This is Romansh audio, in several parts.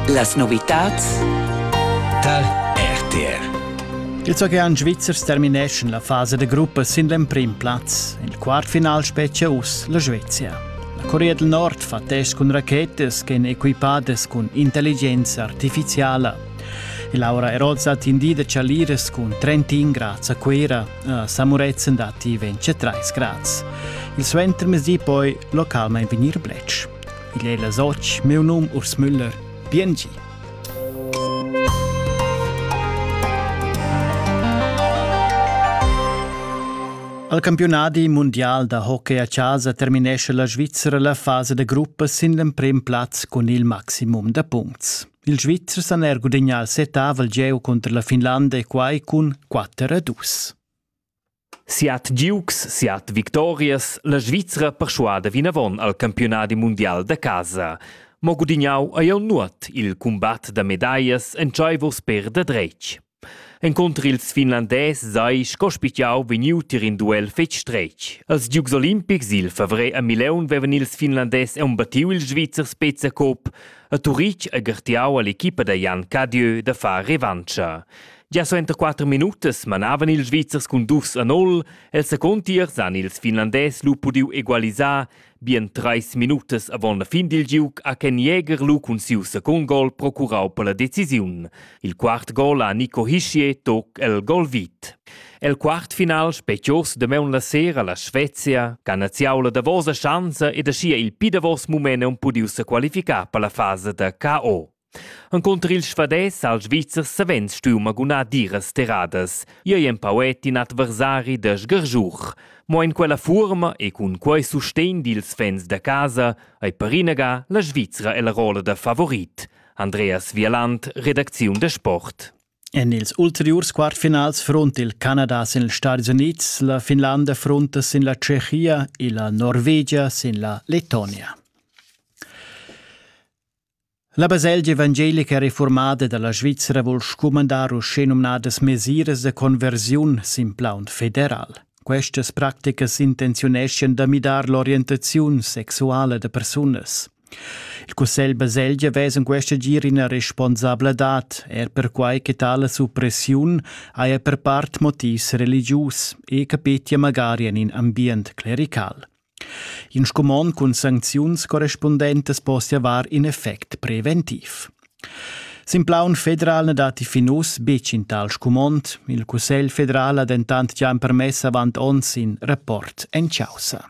Las novitats dal RTR Il Zogean Schweizers termineschan la fasa da gruppa sin l'emprim plaz. Il quartfinal spetgia uss la Svezia. La Corea del Nord fa test cun rachetas ch'èn equipadas cun intelligenza artificiala. E Laura Eroza ha tindì da chaliras cun 31 grads a Cuira. A Samuretzen datti 23 grads. Il suentermezdi poi localmain vegnir bletsch. Igl ei las otg, miu num Urs Müller. Biengi! Al campionadi mundial da hockey a casa terminesce la Svizzera la fasa da gruppa sin l'emprim plaz cun il maximum da puncts. Il Svizzers han er gudagnà il setavel gieu contro la Finlanda e quai cun 4 a 2. Siat giugs, siat victorias, la Svizra perschuada vinavon al campiunadi mundial da casa. Mo gudignau ei jeu nuot il cumbat da medaglias entscheivos per da dretg. Encunter ils finlandès sei sco spitgau vegniu tier in duel fetg stretg. Als giugs olimpics il favrer a Mileun vevan ils finlandès embattiu il Svizzer Spezia-Cup a Turitg e gartiau all'equipa da Jan Cadieu da far revancha. Gia suenter quatter minutas manavan ils Svizzers cun dus a nol. El secund tiers han ils Finlandès lu pudiu egualisar bien treis minutas avon la fin dil giug ha Ken Jäger lu cun siu secund gol procurau per la decisiun. Il quart gol ha Nico Hischier toc el gol vit. El quartfinal specios damaun la sera la Svezia, canaziaula davosa schanza ed aschia il pi davos mument han pudiu sequalificar per la fasa da KO. Encunter il svadès ha il Svizzer savens stuiu magunar diras terradas. Ei ei empau et in adversari da sgargiur. Mo en quella fuorma e cun quei sustegn dils fans da casa ei per inaga la Svizra ella rolla da favorit. Andreas Wieland, redacziun da Sport. En ils ulteriurs quartfinals front il Canada sin ils Stati Unids, la Finlanda fronta sin la Tschechia e la Norvegia sin la Letonia. La baselgia evangelica reformada dalla Svizra vul scumandar uschenumnadas mesiras de conversiun sin plaun federal. Questas practicas intenziuneschan da midar l'orientaziun sexuala de persunas. Il Cussegl Baselgia vess in questa gir ina responsabladad, er perquai che tale suppressiun haja per part motivs religius e capetia magari en in ambient clerical. In scumond cun sancziuns correspundentas possia var in effect preventiv. Sin plaun federal na datti fin uss betg in tal scumond. Il Cussegl federal ha dentant già empermess avant onns in rapport en chaussa.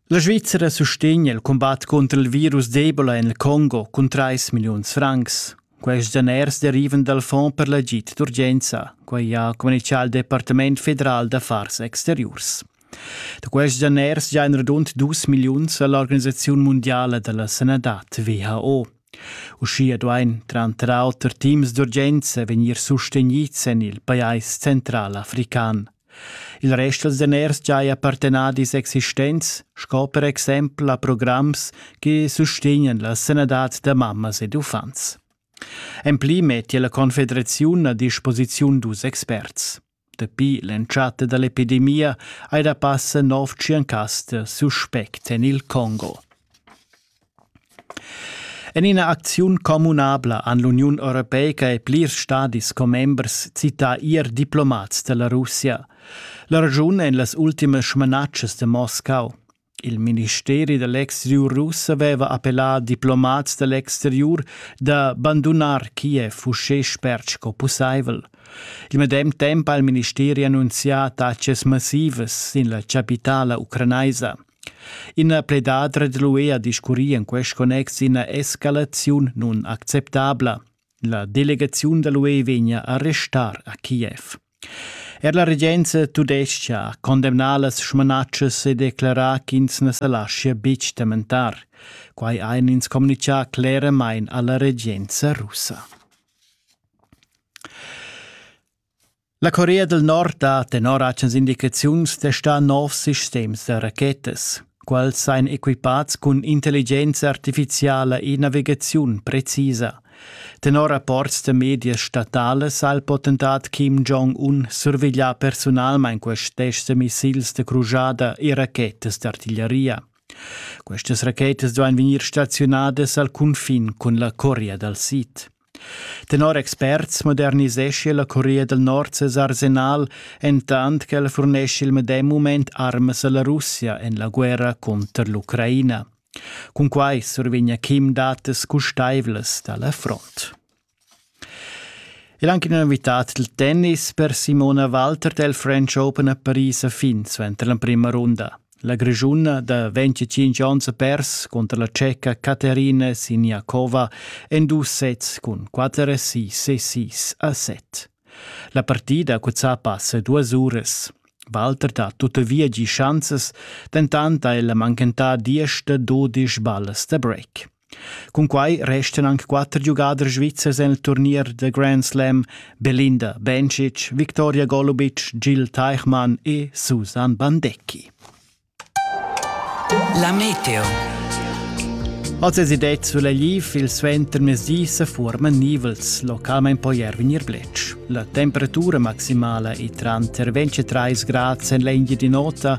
La Svizzera sustegna il cumbat cunter il virus d'Ebola en il Congo cun 3 milliuns francs. Quests daners derivan dal Fonds per l'agid d'urgenza, quai ha communitgà il Departament federal d'affars exteriurs. Da quests daners giain radund 2 milliuns a l'Organisaziun mundiala da la sanadad WHO. Uschia duain tranter auter teams d'urgenza vegnir sustegnids en il pajais central african. Il rest dals daners giaja per tenadis existents sco per exempel a programs che sustegnan la sanadad da mammas ed uffants. En pli mettia la Confederaziun a disposiziun dus experts. Dapi l'entschatta da l'epidemia hai da passa nov tschient cas da suspect en il Congo. En ina acziun communabla han l'Uniun europeica e plirs stadis commembers cità ier diplomats da la Russia. La raschun èn las ultimas smanatschas da Moscau. Il ministeri da l'exteriur russ aveva appellà diplomats da l'exteriur da bandunar Kiev uschè spert sco pussaivel. Il medem temp ha il ministeri annunzià taxas massivas sin la chapitala ucranaisa. Ina pledadra dall'UE ha discurri en quest connex ina escalaziun nun acceptabla. La delegaziun dall'UE vegna a restar a Kiev. Er la regenza tudestga ha condemnà las smanatschas e declarà ch'ins na sa laschia betg tementar. Quai ein ins communicà cleramain alla regenza russa. La Corea del Nord ha tenor atgnas indicaziuns testà novs sistems da rachetas. Quels ein equipats cun intelligenza artificiala e navigaziun precisa. Tenor rapports da medias statales ha il potentat Kim Jong-un surveglià personalmein quests tests da missils da crujada e rachetas d'artiglieria. Questas rachetas duein vegnir stazionadas al cunfin cun la Corea dal Sid. Tenor experts moderniseschi la Corea del Nord ses arsenal, entant ch'el furneschi il medem mument armas alla Russia en la guerra cunter l'Ucraina. Cun quai survegna Kim datas custaivlas da la front. E anche una novità del tennis per Simona Walter del French Open a Paris a fin suenter la prima runda. La Grischuna da 25 onns ha pers cunter la Ceca Caterina Siniakova en dus sets cun 4 6 6 a 7. La partida ha cuzzà passa duas uras. Walter ha tuttavia gì schanzas, dentant ha ella manchentà diesch da dudisch ballas da break. Cunquai restan anc quatter giugaders svizzers en il turnier da Grand Slam Belinda Bencic, Viktoria Golubic, Gil Teichmann e Susan Bandecki. La meteo. Als es det sulla liv il suentermezdi se forman nivels, localment po ier venir blec. La temperatura maximala è tra 23 gradi en l'India di nota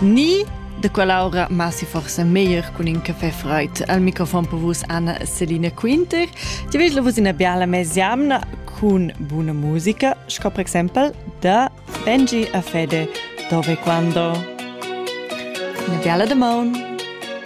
Ni de quell'aura ma si forse meglier con in caffè freud. Al microfon per vus Anna Selina Quinter. Ti vedi la vus in biala mesiamna con buona musica, sco per esempio da Benji a Fede, dove quando. Una biala de maun.